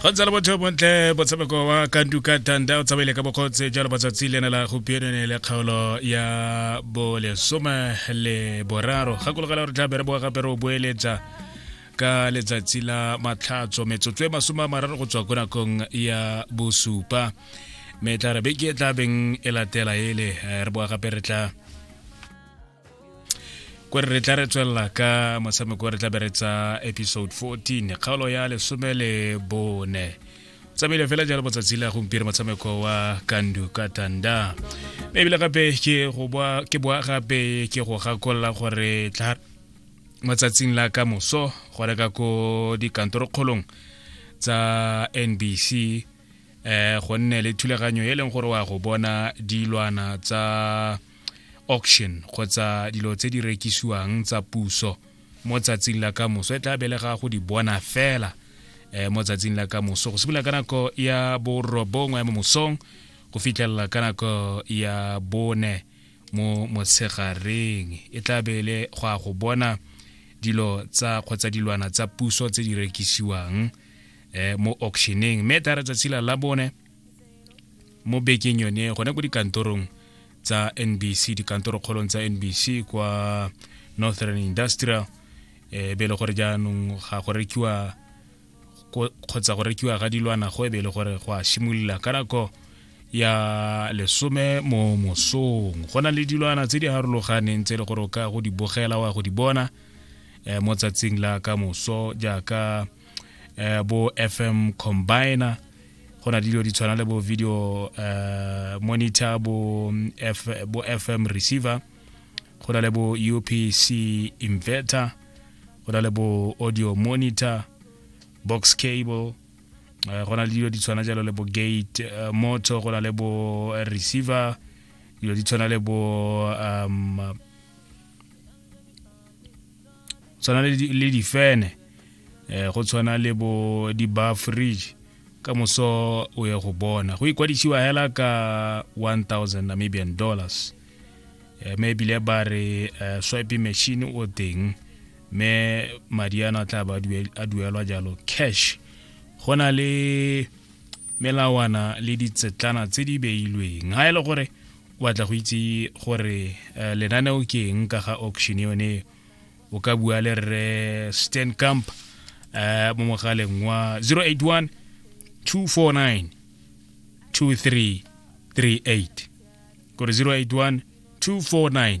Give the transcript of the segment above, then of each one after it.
go ntse le botho bontle motshameko wa kanduka tanda o tsamaile ka bokgotse jalo matsatsi le ne la gompieno ne le kgaolo ya bolesome le boraro gakologela gore tla bere boa gape re o boeletsa ka letsatsi la matlhatso metsotso e masome a mararo go tswa ko nakong ya bosupa me tla re beke e tla beng e latela ele eh, re boa gape re tla ko re tla re tswelela ka motshameko re tla be re tsa episode 14 kgaolo ya lesome le bone tsamaile fela jalo botsatsi la gompieno motshameko wa kandu ka tanda mme ebile gape ke go boa ke boa gape ke go gakolola gore tla matsatsing la ka moso go reka ko dikantorokgolong tsa nbc eh go nne le thulaganyo e leng gore wa go bona dilwana tsa auction kgotsa dilo tse di rekisiwang tsa puso mo tsatsing la ka moso e tla belega go di bona fela eh, mo tsatsing la ka moso go simolola ka nako ya borobongwe ya mo mosong go fitlhelela ka nako ya bone mo motshegareng e tla bele go a go bona dilo tsa kgotsa dilwana tsa puso tse di rekisiwang eh, mo auctioneng mme e tla re tsatsi la bone mo bekeng yone gone ko dikantorong tsa nbc dikantoro kgolong tsa nbc kwa northern industrial e be e le gore jaanong ga go rekiwa kgotsa go rekiwa ga dilwana go e be e le gore go a simolola ka nako ya lesome mo mosong go na le dilwana tse di harologaneng tse e le gore o ka go di bogela wa go di bona e, mo tsatsing la ka moso jaaka eh, bo fm combiner go na dilo di tshwana le bo video uh, monitor bo, mm, F, bo fm receiver go na le bo upc inverter go na le bo audio monitor box cable uh, go na le dilo di tshwana jalo le bo gate uh, motor go na le bo receiver dilo di tshwana le bo um, tshwana le difene eh go tshwana le bo di-bar fridge ka moso o ye go bona go ikwadisiwa hela ka 1000 namibian dollars eh, me ebile ba re eh, swipe machine o teng me madi ano a tla ba a duelwa jalo cash go na le melawana le ditsetlana tse di beilweng ga e le gore o batla go itse gore eh, lenaneo ke eng ka ga auction yone o ka bua le rre stan camp eh, mo mogaleng wa 081 249 2338 kore 081 249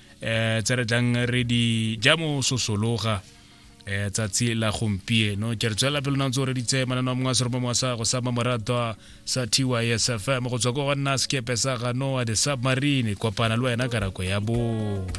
eh tse re tlang re di ja mo sosologa eh tsatsi la gompieno ke re tswela pele nantse re ditse manana mongwe se re mo sa go sa mamoratwa sa TYSFM go tswa go nna sekepe sa ganoa de submarine kopana le wena karako ya bo